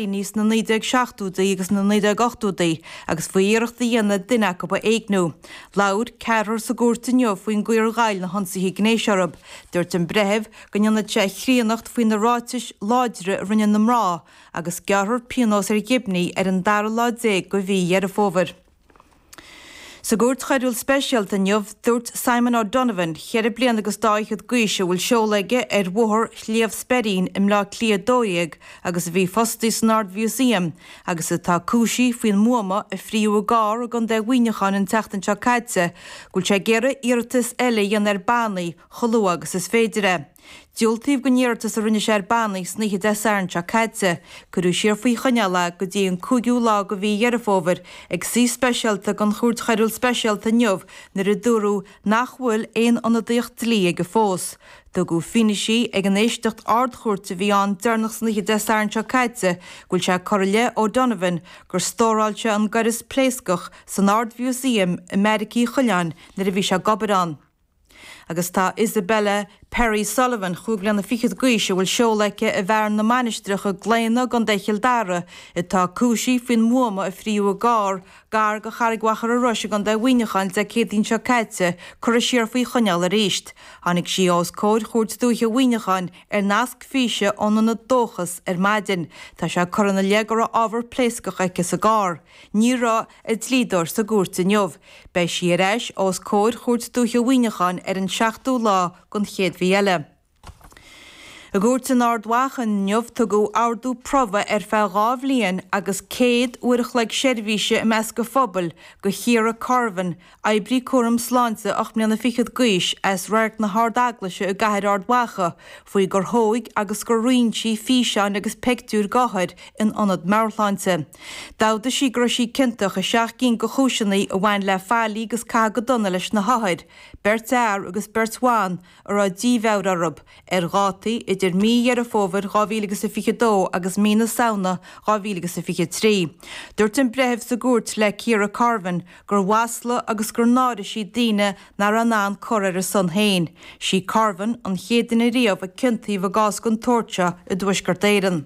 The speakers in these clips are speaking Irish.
ní sna 1970idí agus na 1980idí agus faoi iarracht a dhéanamh duine acu a éigniú. Labhair ceathrar sa gcúirt inniu faoin gcaoi ar ghoill na hionsaithe gnéis orthu. Dúirt an breitheamh go ndéanfadh sé a chríonnacht faoi na ráitis láidre a rinne na mná agus gearrfar pionós ar Ghibney ar an dara lá déag de mhí Dheireadh Fómhair. Sa gcúirt choiriúil speisialta inniu, dúirt Simon O'Donovan, cheithre bliana agus dá fhichead d'aois a bhfuil seoladh aige ar Bhóthar Shliabh Speirín i mBleá Cliath 12 agus a bhí fostaithe san Ard-Mhúsaem agus atá cúisithe faoin mbuama a fríothadh i gcarr i gContae Mhuineacháin an tseachtain seo caite go bhfuil sé ag iarraidh iarratas eile a dhéanamh ar bannaí chomh luath agus is féidir é. Diúltaíodh don iarratas a rinne sé ar bannaí san oíche Dé Sathairn seo caite. Cuireadh siar faoi choinneáil é go dtí an cúigiú lá de mhí Dheireadh Fómhair ag suí speisialta den Chúirt Choiriúil Speisialta inniu nuair a dúradh nach bhfuil aon ionadaíocht dlí aige fós. Tugadh fianaise ag an éisteacht Ard-Chúirte a bhí ann deireanach san oíche Dé Sathairn seo caite go bhfuil sé curtha i leith O'Donovan gur stóráil sé an gaireas pléascach san Ard-Mhúsaem i mBeairic Uí Choileáin nuair a bhí sé ag obair ann. Agus tá Isabella Perry Sullivan, chúig bhliana fichead d'aois a bhfuil seoladh aici i bhFearann na Mainistreach i gClaonadh i gContae Chill Dara, atá cúisithe faoin mbuama a fríothadh i gcarr gar do Charraig Mhachaire Rois i gContae Mhuineacháin Dé Céadaoin seo caite curtha siar faoi choinneáil arís. Tháinig sí os comhair Chúirt Dúiche Mhuineacháin ar nasc físe ón ionad Dóchas ar maidin. Tá sé curtha ina leith go raibh ábhar pléascach aici sa gcarr. Ní raibh a dlíodóir sa gcúirt inniu. Beidh sí ar ais os comhair Chúirt Dúiche Mhuineacháin ar an seachtú lá den chéad mhí eile. I gcúirt in Ard Mhacha inniu tugadh ordú promhaidh ar feadh dhá bhliain agus céad uair a chloig seirbhíse i measc an phobail do Chiara Corvan Oibrí cúraim sláinte ocht mbliana fichead d'aois as Radharc na hArd-Eaglaise i gCathair Ard Mhacha faoi gur thóig agus gur roinn sí físeáin agus peictiúir d'othair in ionad meabharshláinte. D'amhdaigh sí go raibh sí ciontach i seacht gcinn de chúiseanna a bhain le faillí agus caitheamh go dona leis na hothair, beirt fhear agus beirt bhan, a raibh dímheabhair orthu, ar dhátaí idir mí Dheireadh Fómhair 2022 agus mí na Samhna 2023. Dúirt an breitheamh sa gcúirt le Ciara Corvan gur mhaslaigh agus gur náirigh sí daoine nach raibh in ann cur ar a son féin. Sí Corvan an chéad duine riamh a ciontaíodh i gcás den tsórt seo i dTuaisceart Éireann.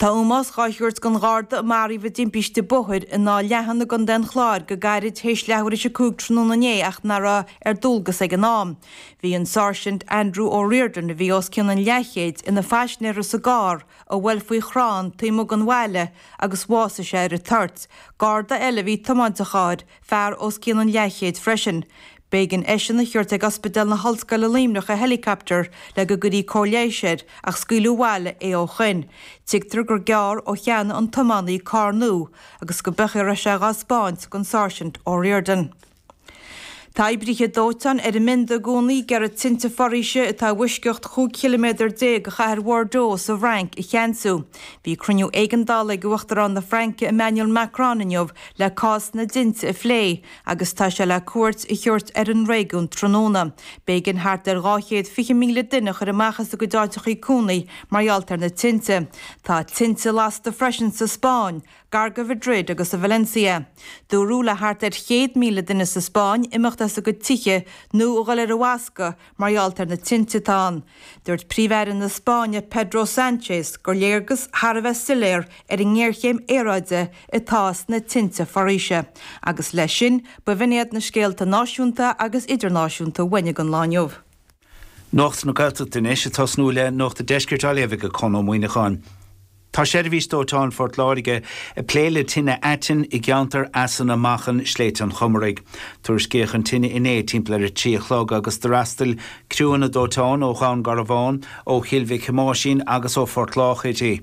Tá ómós dhá thabhairt don Gharda a maraíodh i dtimpiste bóthair in Áth Leathan i gContae an Chláir go gairid théis leathuair théis a cúig tráthnóna inné ach nach raibh ar dualgas ag an am. Bhí an Sáirsint Andrew O'Riordan, a bhí os cionn an leathchéid, ina phaisnéara sa gcarr a bhuail faoi chrann taobh amuigh den bhaile agus bhásaigh sé ar an toirt. Garda eile a bhí ag tiomáint an chairr, fear os cionn an leathchéid freisin. B'éigean eisean a thabhairt ag Ospidéal na hOllscoile Luimneach i helicopter le go gcuirí cóir leighis air ach scaoileadh abhaile é ó shoin. Tuigtear gur gearr ó cheannaigh an t-iománaí carr nua agus go mb'ea go raibh sé dhá spáint gon Sáirsint O'Riordan. Tá oibrithe dóiteáin ar a mbionda i gcónaí ag iarraidh tinte foraoise atá i bhfoisceacht chúig chiliméadar déag de chathair Bhordeaux sa bhFrainc a cheansú. Bhí cruinniú éigeandála ag Uachtarán na Fraince Emmanuel Macron inniu le cás na dtinte a phlé, agus tá sé le cuairt a thabhairt ar an réigiún tráthnóna. B'éigean thart ar 220,000 duine a chur amach as a gcuid áiteachaí cónaí mar gheall ar na tinte. Tá tinte lasta freisin sa Spáinn, gar do Mhaidrid agus i Valencia. Dúradh le thart ar 100,000 duine sa Spáinn imeacht as a gcuid tithe nó a dhul ar an bhfoscadh Mar gheall ar na tinte atá ann, dúirt Príomh-Aire na Spáinne Pedro Sánchez gur léargas thar a bheith soiléir ar an ngéarchéim aeráide atá sna tinte foraoise agus leis sin b'in iad na scéalta náisiúnta agus idirnáisiúnta a bhain leis an lá inniu. Nuacht na Gaeltachta anois, ag tosnú le nuacht an deiscirt á léamh ag Conn Ó Muíneacháin. Tá seirbhís dóiteáin Phort Láirge ag plé le tine aitinn i gceantar Eas na Machan, i Sléibhte an Chomaraigh. Tuairiscíodh an tine inné timpeall ar a trí a chlog agus d'fhreastail criúnna dóiteáin ó Dhún Garbhán, ó Chill Mhic Thomáisín agus ó Phort Lách uirthi.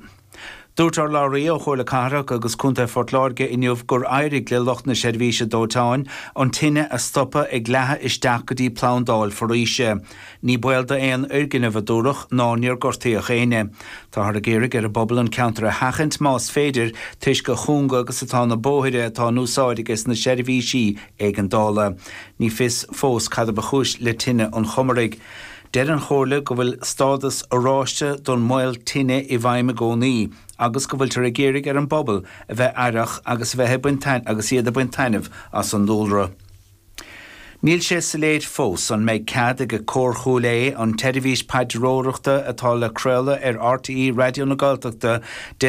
Dúirt urlabhraí ó Chomhairle Cathrach agus Contae Phort Láirge inniu gur éirigh le lucht na seirbhíse dóiteáin an tine a stopadh ag leathadh isteach go dtí plandáil foraoise. Ní baol d'aon fhoirgneamh a dúradh ná níor gortaíodh éinne. Táthar ag iarraidh ar an bpobal an ceantar a sheachaint más féidir toisc a chúnga agus atá na bóithre atá in úsáid aige sna seirbhísí éigeandála. Ní fios fós cad a ba chúis le tine an Chomaraigh. Deir an Chomhairle go bhfuil stádas oráiste don mbaol tine i bhfeidhm i gcónaí agus go bhfuiltear ag iarraidh ar an bpobal a bheith aireach agus a bheith agus iad ag baint taitneamh as an dúlra. Níl sé soiléir fós an mbeidh cead ag Cór Chúil Aodha an tseirbhís paidreoireachta atá le craoladh ar RTÉ Raidió na Gaeltachta Dé